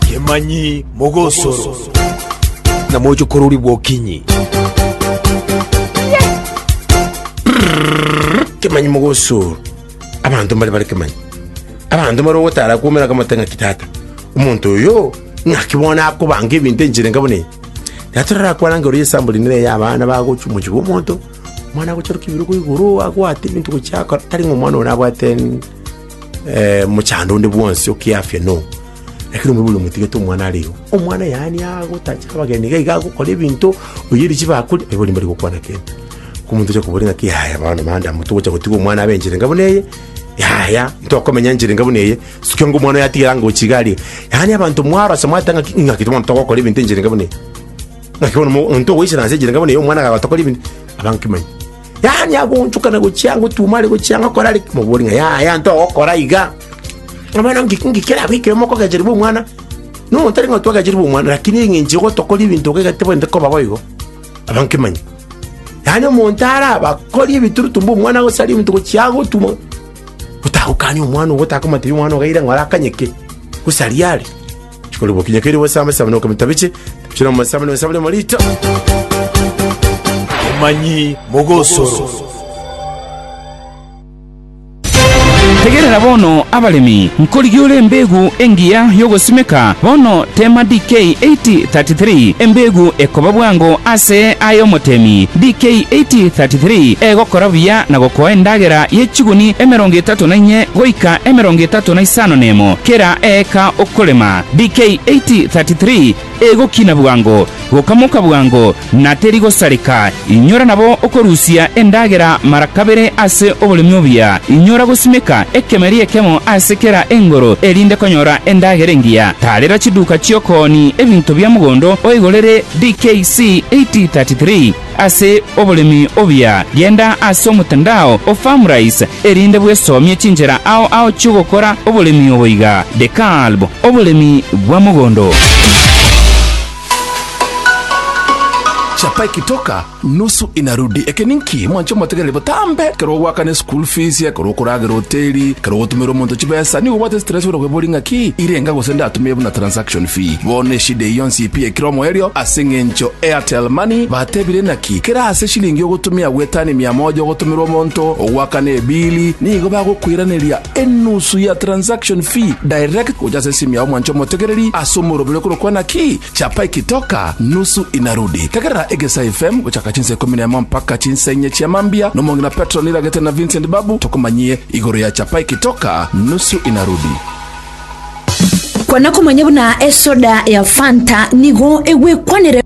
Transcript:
Kemanyi mogosoro. Na moche korori bwokinyi. Kemanyi mogosoro. Abanto mbare bare kemanyi. Abanto mbare ogotara kwomera kamate ng'aki tata. Omonto oyo ng'aki bono akobanga ebinto enchera enka buna eye. Tata orarakwanange ore esample nere ya abana bagochia omochie bwa omonto, omwana agocharuka ebirogo igoro abwate ebinto gochia akora tari ng'a omwana one abwate. eh, mochando onde bwonsi okiafia no lakini omwe buli omotigete omwana are igo omwana yaani agotacha abageni iga iga agokora ebinto oyeri chibakuri aye bori mbari gokwana kende komonto ocha kobori ng'aki yaya bono manda moto gocha gotiga omwana abe enchera enga buna eye yaya ntokomenya enchera enga buna eye sukia ngo omwana yatigera ngochi iga arie yaani abanto mwarose mwatanga ng'aki ng'aki bono togokora ebinto enchera enga buna eye ng'aki bono mo- omonto ogoichera nse enchera enga buna eye omwana agagotokora ebinto abankimanyi Yaani agoonchokana gochia ang'o otuoma are gochia ang'o akore are ki? Mobori ng'a yaya ntogokora iga. Abana ngiki ngiki kera abekire mokogecherwa omwana. Nomonto tari ng'a twagecherwa omwana lakini eng'encho gotokora ebinto iga iga tibwenerete koba boigo. Abankemanya. Yaani omonto araba akori ebiturutu mbu omwana gose arie ebinto gochia ago otuoma otagokania omwana ogo otakomotebia omwana ogaire ng'a orakanye ki? Gose aria are. Chikori bokinya keri bosame same no kamita biche. Chira mo same no same mo lita. Emanyi mogosoro. Tegerera bono abaremi, nkorigia ore embegu engiya y'ogosimeka, bono teema DK 8033, embegu ekoba bwango ase aye omotemi, DK 8033, egokora buya na gokoa endagera ye chiguni emerongo etato na inye goika emerongo etato na isano nemo kera eeka Okorema, BK 8:33 Egokina bwango, gokamoka bwango, na teri gosareka, inyora nabo okorusia endagera mara kabere ase oboremi obuya, inyora gosimeka ekemeri ekemo ase kera engoro erinde konyora endagera engiya, tarera chiduka chi'okooni ebinto bia mogondo oigorere, BK C 8:33. Ase oboremi obuya, genda ase omotandao o Farmrise erinde bwesomie chinchera ao ao chi'ogokora oboremi obo iga, The Kalb, Oboremi bwa mogondo. Chapa ekitoka nusu inarudi. Eke ninki mwanche omotegereri botambe? Kero ogoakana eschool fees, kero okoragera hoteli, kero ogotumera omonto chibesa, nigo obwate stress buna kweboria ng'aki irenga gose ndatumie buna transaction. John Fi, Bono eshida eyio yonsi pi ekero omoerio ase eng'encho Airtel Money batebire naki kera ase shilingi ogotumia gwetani mia moja ogotomerwa omonto ogoakana ebili nigo bagokoiraneria enusu ya transaction fi direct gocha ase esimu yao mwancha omotegereri ase omoroberi okorokwa naki Chapa Ikitoka Nusu Inarudi tegerera Egesa FM gochaka chinsa ikomi nemo mpaka chinsa inye chia mambia nomong'ina Petro Niragete na Vincent Babu tokomanyie igoro ya Chapa Ikitoka Nusu Inarudi. Kwana komanya buna esoda ya Fanta nigo egwekwanire.